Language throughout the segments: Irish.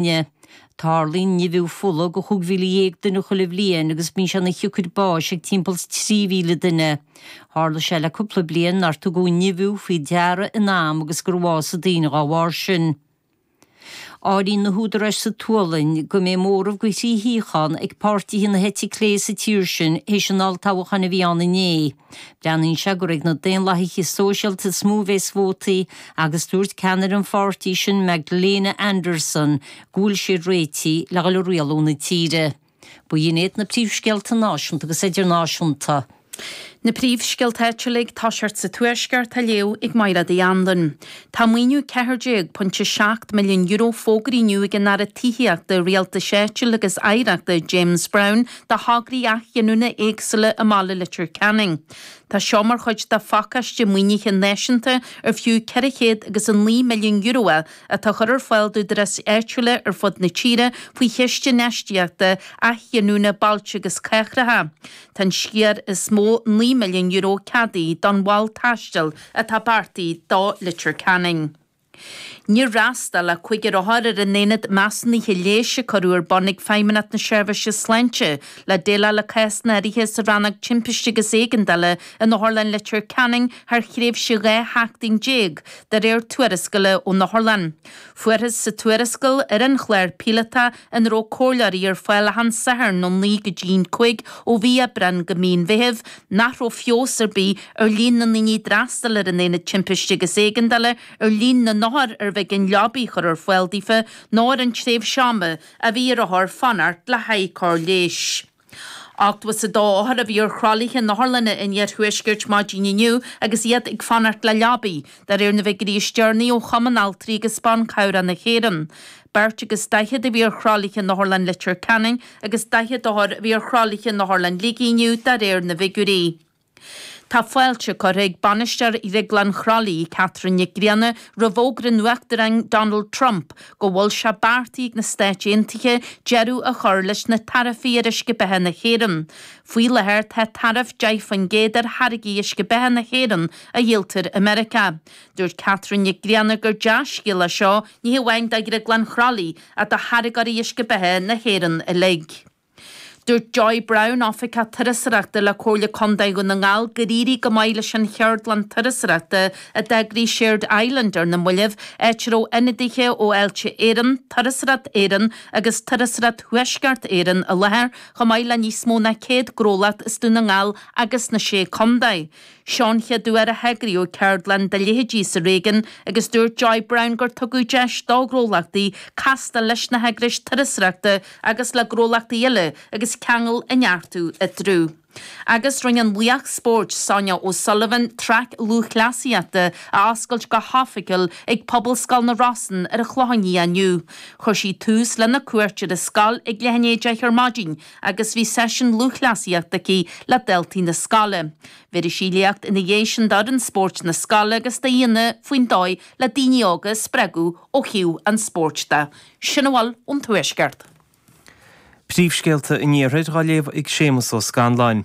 Áine, Tarlaíonn nimhiú fola do chúig mhíle dhéag duine chuile bhliain agus bíonn sé ina shiocair báis ag timpeall is trí mhíle duine. Tharla sé le cúpla bliain nár tugadh nimhiú faoi deara in am agus gur bhásaigh daoine dá bharr sin. Áiríonn na húdaráis sa tSualainn go mbeidh móramh de thrí shuíochán ag páirtithe na heite clé sa tír sin théis an olltoghcháin a bhí ann inné. Breathnaíonn sé gur ag na Daonlathaithe Sóisialta is mó a bheas vótaí agus dúirt ceannaire an pháirtí sin Magdalena Andersson go bhfuil siad réitithe le dhul a rialú na tíre. Ba dhin iad na príomhscéalta náisiúnta agus idirnáisiúnta. Na príomhscéalta áitiúla ag tosacht sa Tuaisceart á léamh ag Máire Uí Anluain. Tá maoiniú €14.7 milliún fógraithe inniu ag an Aire Tithíochta, Rialtais Áitiúil agus Oidhreachta, James Browne, do thograí athghiniúna éagsúla i mbaile Leitir Ceanainn. Tá seo mar chuid de phacáiste maoinithe náisiúnta ar fiú ceithre chéad agus a naoi milliún euro é atá á chur ar fáil d'údaráis áitiúla ar fud na tíre faoi Chiste Infheistíochta Athghiniúna Bailte agus Cathracha. Tá an sciar is mó, naoi milliún euro, ceadaithe don mhol taistil atá beartaithe do Leitir Ceanainn. Níor fhreastal ach cúigear othar ar an Aonad Measúnaithe Leighis a cuireadh ar bun ag Feidhmeannacht na Seirbhíse Sláinte le déileáil le cásanna áirithe sa Rannóg Timpiste agus Éigeandála in Otharlann Leitir Ceanainn thar thréimhse 12 sheachtain, de réir tuarascála ón Otharlann. Fuarthas sa tuarascáil ar an chlár píolótach ina raibh comhairleoirí ar fáil achan Satharn ó naoi go dtí'n cúig ó mhí Aibreán go mí an Mheithimh, nach raibh feabhas ar bith ar líon na ndaoine a d'fhreastail ar an Aonad Timpiste agus Éigeandála, ar líon na n-othar arbh éigean leabaidh a chur ar fáil daofa, ná ar an tréimhse ama a bhí ar othair fanacht le haghaidh cóir leighis. 82 othar a bhí ar thralaithe in otharlanna an iarthuaiscirt maidin inniu agus iad ag fanacht le leabaidh, de réir na bhfigiúirí is deireanaí ó Chumann Altraí agus Ban Cabhrach na hÉireann. Beirt agus daichead a bhí ar thralaithe in Otharlann Leitir Ceanainn agus 40 othar a bhí ar thralaithe in Otharlann Shligigh inniu de réir na bhfigiúirí. Tá fáilte curtha ag bainisteoir Dhrioglann Chroithlí, Catherine Nic Grianna, roimh fhógra an Uachtaráin Donald Trump go bhfuil sé beartaithe ag na Stáit Aontaithe deireadh a chur leis na taraifí ar uisce beatha na hÉireann. Faoi láthair tá taraif 10% ar tháirgí uisce beatha na hÉireann a dhíoltar i Meiriceá. Dúirt Catherine Nic Grianna gur dea-scéal é seo, ní hamháin do Dhrioglann Chroithlí ach do tháirgeoirí uisce beatha na hÉireann uilig. Dúirt Joy Browne, Oifigeach Turasóireachta le Comhairle Contae Dhún na nGall gur éirigh go maith leis an cheardlann turasóireachta a d'eagraigh Shared Island ar na moillibh, áit a raibh ionadaithe ó Fháilte Éireann, Turasóireacht Éireann agus Turasóireacht Thuaisceart Éireann i láthair, chomh maith le níos mó ná 100 gnólacht as Dún na nGall agus na Sé Contae. Seo an chéad uair a heagraíodh ceardlann dá leithéidí sa réigiún agus dúirt Joy Browne gur tugadh deis do na gnólachtaí castáil leis na heagrais turasóireachta agus le gnólachtaí eile agus ceangail a neartú eatarthu. Agus rinne an laoch spóirt Sonia O'Sullivan traic lúthchleasaíochta a oscailt go hoifigiúil ag Pobalscoil na Rosann ar an Chlochán Liath inniu. Chuir sí tús lena cuairt ar an scoil ag leath i ndiaidh a deich ar maidin, agus bhí seisiún lúthchleasaíochta aici le daltaí na scoile. Bhéarfaidh sí léacht ina dhiaidh sin d'fhoireann spóirt na scoile agus d'aíonna faoin dóigh le daoine óga a spreagadh ó thaobh an spóirt de. Sin a bhfuil ón Tuaisceart. Príomhscéalta an Iarthair á léamh ag Séamas Ó Scanláin.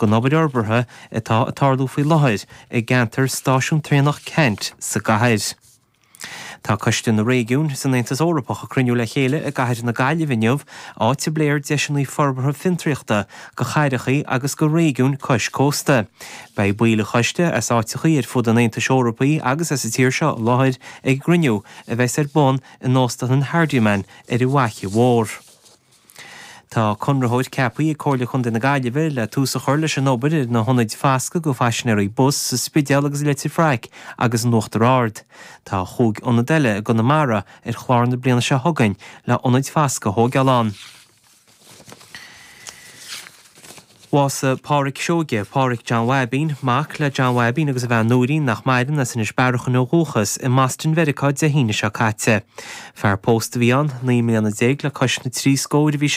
den obair fhorbartha atá ag tarlú faoi láthair i gceantar Stáisiún Traenach Ceannt sa gcathair. Tá Coiste na Réigiún san Aontas Eorpach ag cruinniú le chéile i gcathair na Gaillimhe inniu, áit a bpléifear deiseanna forbartha fiontraíochta do chathrachaí agus do réigiúin cois cósta. Beidh baill an choiste as áiteachaí ar fud an Aontais Eorpaí agus as an tír seo i láthair ag an gcruinniú a bheas ar bun in Óstlann Hardiman ar an bhFaiche Mhór. Tá conraitheoir ceapthaí ag Comhairle Chontae na Gaillimhe le tús a chur leis an obair ar na hionaid foscaidh do phaisinéirí bus sa Spidéal agus i Leitir Fraic agus in Uachtar Ard. Tá chúig ionad eile i gConamara ar chlár na bliana seo chugainn le ionaid foscaidh a thógáil ann. Bhásaigh Pádhraic Seoige, Pádhraic John Bhaibín, mac le John Bhaibín agus a bhean Nóirín, nach maireann, as Inis Bearachain ó dhúchas, i mBoston Mheiriceá Dé hAoine seo caite. Fear pósta a bhí ann, naoi mbliana déag le cois na trí scóir a bhí sé.